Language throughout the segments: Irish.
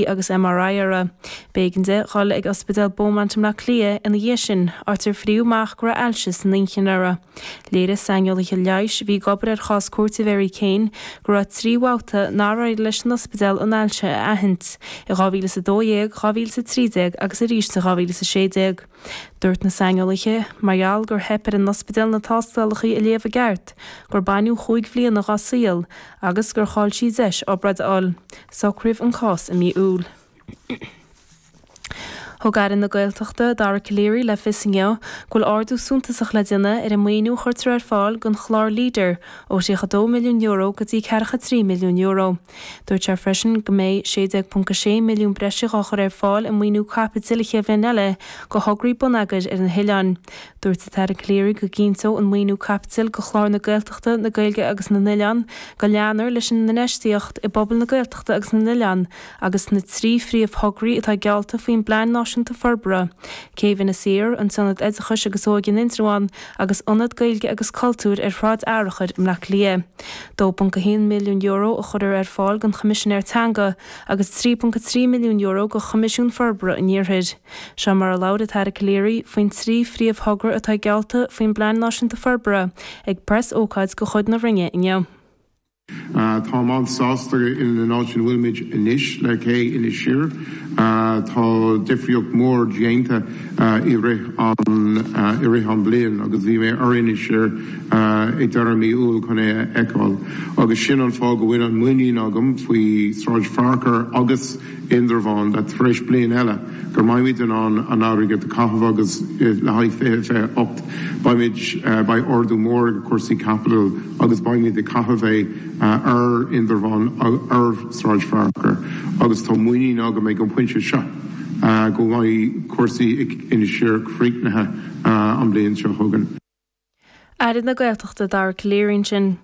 agus MRI uirthi. B'éigean di dhul ag Ospidéal Beaumont i mBleá Cliath ina dhiaidh sin, áit ar fríodh amach go raibh ailse san inchinn uirthi. Léirigh saineolaithe leighis a bhí ag obair ar chás cúirte Mhary Keane go raibh trí bhabhta nár éirigh leis an ospidéal an ailse a aithint, i 2012, 2013 agus arís i 2016. Dúirt na saineolaithe, mar gheall gur theip ar an ospidéal na tástálacha a léamh i gceart, gur baineadh chúig bhliana dá saol agus gur chaill sí deis obráid a fháil. Socraíodh an cás i mí Iúil. Thug Aire na Gaeltachta, Dara Calleary, le fios inniu go bhfuil ardú suntasach le déanamh ar an maoiniú a chuirtear ar fáil don chlár Leader, ó €32 milliún go dtí €43 milliún. Dúirt sé freisin go mbeidh 16.6 milliún breise á chur ar fáil i maoiniú caipitil an chéad bhliain eile do thograí bonneagair ar na hoileáin. Dúirt an tAire Calleary go gcinnteodh an maoiniú caipitil do Chlár na Gaeltachta, na Gaeilge agus na nOileán go leanfar leis an infheistíocht i bpobail na Gaeltachta agus na nOileán agus na trí phríomhthograí atá geallta faoin bPlean Náisiúnta Forbartha, Céibh Inis Oírr, an tIonad Oideachais agus Óige in Indreabhán, agus Ionad Gaeilge agus Cultúir ar Shráid Fhearchair i mBleá Cliath. €2.1 milliún a chuirfear ar fáil don Choimisinéir Teanga agus €3.3 milliún do Choimisiún Forbartha an Iarthair. Seo mar a labhair an tAire Calleary faoin trí phríomhthogra atá geallta faoin bPlean Náisiúnta Forbartha ag preas-ócáid de chuid na Roinne inniu. Táim an-sásta in an áit ina bhfuilimid anois le cé Inis Oírr. Tá difríocht mhór déanta i rith an i rith an bliain agus bhí mé ar Inis Oírr ag deireadh mí Iúil chun é a fheiceáil agus sin an fáth go bhfuil an muinín agam faoi Sráid Fhearchair agus Indreabhán le tar éis bliain eile go mbeimid in ann an airgead a chaitheamh agus le haghaidh 2028 beimid beidh ardú mór ag cúrsaí caipitil agus beimid ag caitheamh é ar Indreabhán ar Sráid Fhearchair agus tá muinín agam ag an pointe seo go mbeidh cúrsaí ag Inis Oírr críochnaithe an bhliain seo chugainn. Aire na Gaeltachta Dara Calleary ansin.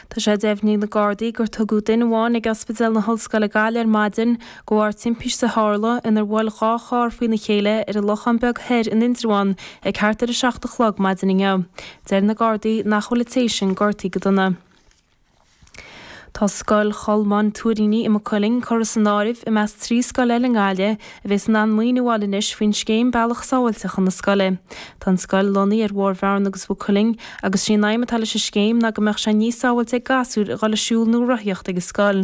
Tá sé deimhnithe ag na Gardaí gur tugadh duine amháin ag Ospidéal na hOllscoile Gaillimh ar maidin de bharr timpiste a tharla inar bhuail dhá charr faoina chéile ar an Lochán Beag Thoir in Indreabhán ag thart ar 7 a chlog maidin inniu. Deir na Gardaí nach bhfuil an té sin gortaithe go dona. Tá Scoil Cholmáin Tuairíní i Maigh Cuilinn curtha san áireamh i measc trí scoil eile i nGaillimh a bhéas in ann maoiniú a fháil anois faoin scéim Bealach Sábháilte chun na Scoile. Tá an scoil lonnaithe ar Bhóthar Bhearna agus Mhaigh Cuilinn agus sé an aidhm atá leis an scéim ná go mbeadh sé níos sábháilte ag gasúir a dhul ag siúl nó rothaíocht ag an scoil.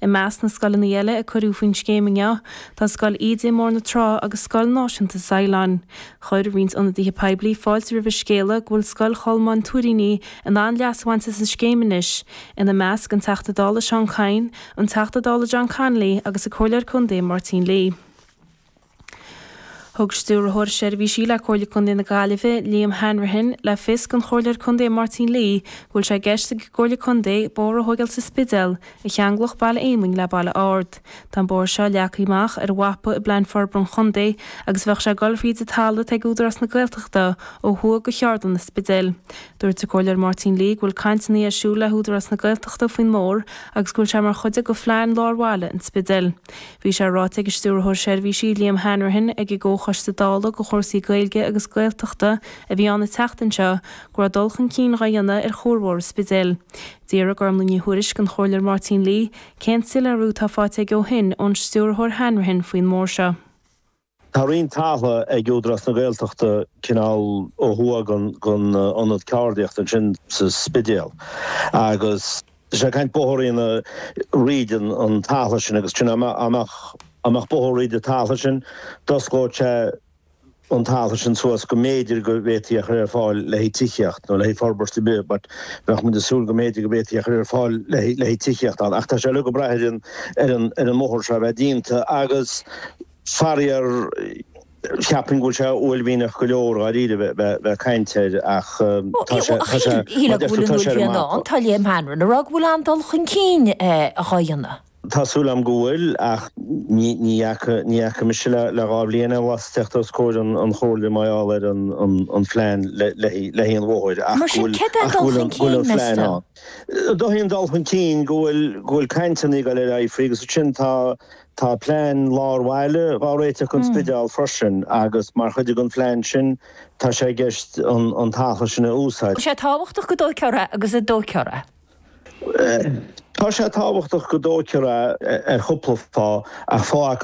I measc na scoileanna eile a cuireadh faoin scéim inniu tá Scoil Íde i mBóthar na Trá agus Scoil Náisiúnta Saighleáin. Chuir roinnt ionadaithe poiblí fáilte roimh an scéala go bhfuil Scoil Cholmáin Tuairíní in ann leas a bhaint as an scéim anois, ina measc, an Teachta Dála Seán Kyne, an Teachta Dála John Connolly agus an Comhairleoir Contae Máirtín Lee. Thug Stiúrthóir Seirbhísí le Comhairle Contae na Gaillimhe, Liam Hanrahan, le fios don Chomhairleoir Contae Máirtín Lee go bhfuil sé i gceist ag an gComhairle Contae bóthar a thóigeáil sa Spidéal, a cheanglódh Baile Éamainn le Baile Ard. Tá an bóthar seo leagtha amach ar mhapa i bPlean Forbartha an Chontae agus bheadh sé ag dul fríd an talamh atá ag Údarás na Gaeltachta ó thuaidh de Cheardlann an Spidéil. Dúirt an Comhairleoir Máirtín Lee go bhfuil cainteanna ar siúl le hÚdarás na Gaeltachta faoin mbóthar agus go bhfuil sé mar chuid de phlean Lár Bhaile an Spidéil. Bhí sé ráite ag an Stiúrthóir Seirbhísí, Liam Hanrahan, ag an gComhchoiste Dála do chúrsaí Gaeilge agus Gaeltachta a bhí ann an tseachtain seo go raibh dul chun cinn dhá dhéanamh ar chuarbhóthar an Spidéil. D'fhiafraigh Gormfhlaith Ní Thuairisg den Chomhairleoir Máirtín Lee, cén soiléiriú atá faighte aige ó shin ón Stiúrthóir Hanrahan faoin mbóthar seo? Tá roinnt talamh ag Údarás na Gaeltachta cineál ó thuaidh den ionad ceardaíochta ansin sa Spidéal agus tá sé ag caint bóthar a dhéanamh thríd an talamh sin agus sin, dá mbeadh bóthar thríd an talamh sin d'osclódh sé an talamh sin suas go mb'fhéidir go bhféadfaí a chur ar fáil le haghaidh tithíocht nó le haghaidh forbairt ar bith but bheadh muid ag súil go mb'fhéidir go bhféadfaí a chur ar fáil le haghaidh le haghaidh tithíocht ann ach tá sé uilig ag brath ar an ar an ar an mbóthar seo a bheith déanta agus faraor cheapfainn go bhfuil sé uaillmhianach go leor dháiríre bheith bheith bheith caint air ach tá sé tá sé tá sé ar an mapa. Tá Liam Hanrahan ag rá go bhfuil an dul chun cinn dhá dhéanamh. Tá súil agam go bhfuil, ach ní fhaca, ní fhaca mise le, le dhá bhliain aon bhlas ag tíocht os comhair an, an Chomhairle mar gheall ar an, an, an phlean le, le, le haghaidh an bhóthair, ach go bhfuil, ach go bhfuil an, go bhfuil an plean ann. Mar sin, cad é an dul chun cinn, meas tú? Is dócha an dul chun cinn go bhfuil, go bhfuil cainteanna ag dul ar aghaidh faoi, agus ansin tá, tá plean lár bhaile dhá réiteach don Spidéal freisin, agus mar chuid den phlean sin tá sé i gceist an, an talamh sin a úsáid. Tá sé tábhachtach go dtóigfear é ar chúpla fáth ach fáth acu.